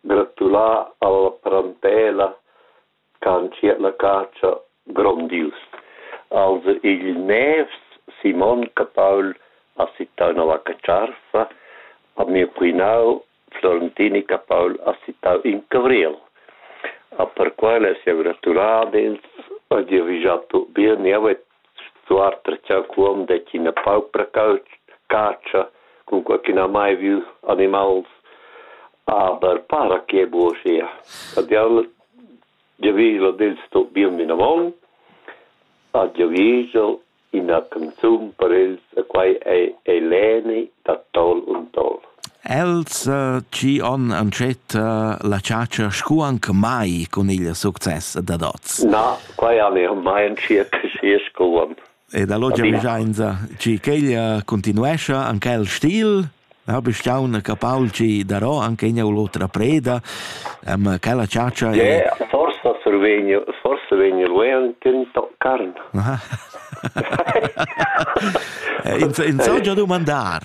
Gratulà alla parentela ch'ha entschiet la catscha grondius. Als igl nevs Simon Capaul ha sittau nova catscha ha miu quinau Florentini Capaul ha sittau in cavriel. A perquai less jeu gratular ad els e dirigiar tut bia niev e Suenter cha'l cuom det ina paupra catscha cun qualchüna mai vieü animals, aber para che buo sia. Adieu, giavüschel ad els tuot bun vinavon, a giavüschel ina canzun per els e quai ei Eleni da Tol und Tol. Els chi on antschet la chatscha scu anche mai cun il success dad hoz. Na, quai al eau mai entschiet schi sco uonn. Ed allo giavüschainsa chi ch'el cuntinuescha anche el stil. Eu be staun capaul chi darò anche ignà l'otra preda. Ma quella chatscha è... Yeah, forsa survegnu, forsa vegnu lui an tinto carn. In so già dumandar.